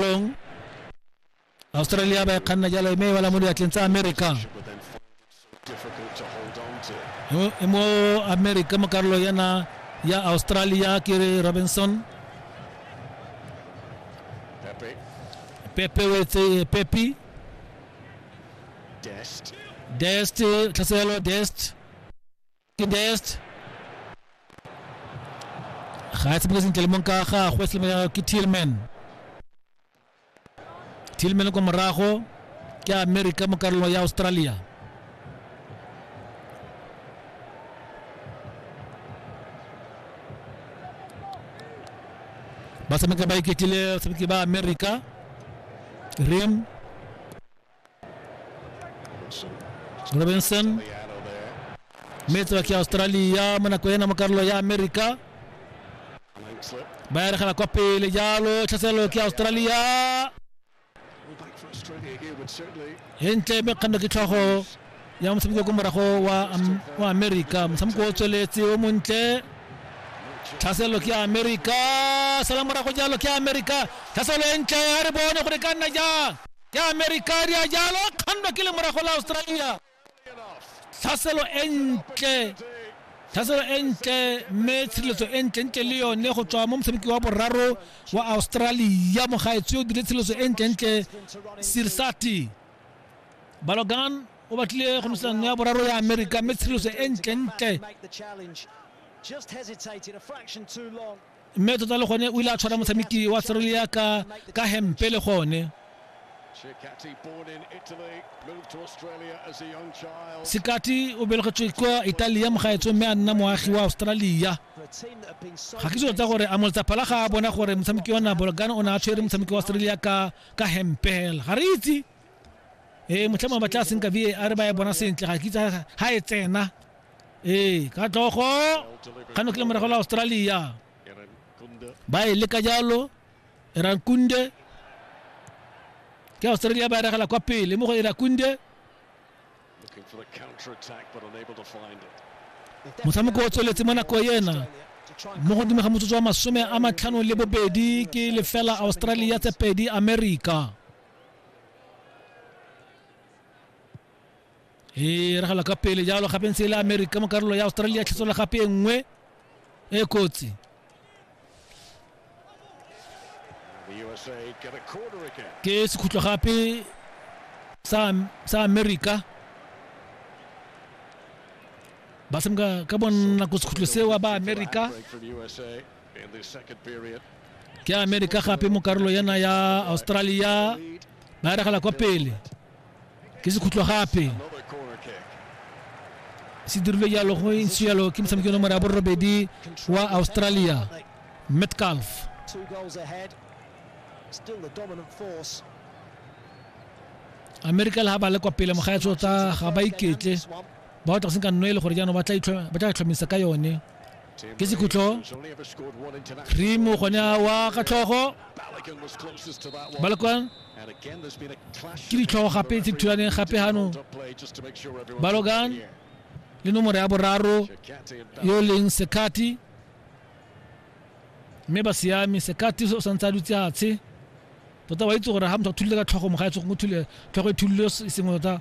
Long. Australia ba e kganna jalo mme e bala mo diatleng tsa America. Mo- e mo America mo karolo yana ya Australia ke re Robinson. Pepe o etse Pepe. Dest, tlhaselo Dest. best ga a tsebile sentle le mong ka gagwe selemo ke tillman tillman ko morago ke america mo karolong ya australia ba tshameka ba iketlile tshameki ba america rim robinson metse wa ke australia mo nako ena mo karolo ya america ba ya regela kwa pele jalo tlhaselo ke australia hentle mme kganno ke tlhogo ya motshameko ko morago wa, Am- wa america motshameko o tsweletse o montle tlhaselo ke america sala morago jalo ke america tlhaselo e ntle a re bone gore ka nna jang ke amerika a dia jalo kgando ke le morago la australia tlhaselo e ntle tlhaselo e ntle mme tshireletso e ntle ntle le yone go tswa mo motshameki wa boraro wa australia mogaetsho o dire tshireletso e ntle ntle sirsati balogan o batlile go nosetsa nno ya boraro ya amerika mme tshireletso e ntle ntle mme tota le gone o ile a tshwara motshameki wa serelia ka ka hempe le gone sekati o belegetswe kwa italia mogaetsong mme a nna moagi wa australia ga ke tota gore a moletsaphala ga a bona gore motshameki wa nabolgana o ne a tshwere motshameki wa australia ka ka hempe fela ga re itse ee motlhamo ba tla senka var ba e bona sentle ga ke itse ga e tsena ee ka tlogo kgano ke le morago la australia ba e leka jalo erankunde ke australia ba eregela kwa pele mo go erakunde motshameko o tsweletse mo nako ena mo godimo ga motsotso wa masome a matlhano le bobedi ke lefela australia tse pedi america e ragala ka pele jalo gape ntse e le america mo karolo ya australia tlhetsola gape e nngwe e kotsi ke sekhutlo gape sa america ba semka ka bonako sekhutlo seo ba america ke america gape mo karolo yana ya australia ba ragala kwa pele ke sekhutlo gape se dirilwe jalo go ntse jalo ke motshameki yo nomoro ya borobedi wa australia metcalf america le ga ba le kwa pele mogaetso tsa ga ba iketle ba batla go senka nno e le gore jaanong ba tla itlhomisa ka yone ke sekhutlo rimo gone wa ka tlhogo balekwan ke ditlhogo gape tse thulaneng gape ganong balogan le nomoro ya boraro yo e leng sekati mme ba siame sekati o santse a dutse atshe tota wa itse gore ga motho a thulile ka tlhogo mo ga etse go thule tlhogo e thulile e sengwe tota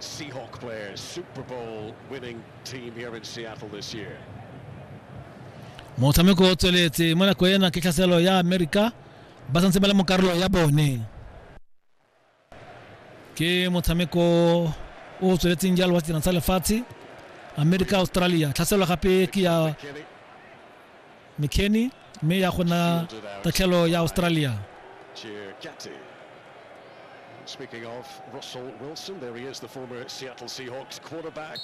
Seahawk players, Super Bowl winning team here in Seattle this year. motshameko o tsweletse mo nako ena ke tlhaselo ya amerika ba santse ba le mo karolo ya bone ke motshameko o tsweletseng jalo wa setirang sa lefatshe amerika australia tlhaselo gape ke ya Kinney, McKennie mme ya go na tatlhelo ya Australia. Speaking of Russell Wilson, there he is, the former Seattle Seahawks quarterback.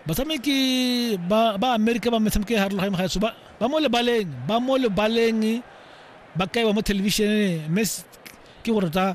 batshameki ba ba amerika ba metshameko e harologaneng ga eso ba ba mo lebaleng ba mo lebaleng ba kaiwa mo thelebišeneng mme s- ke go rata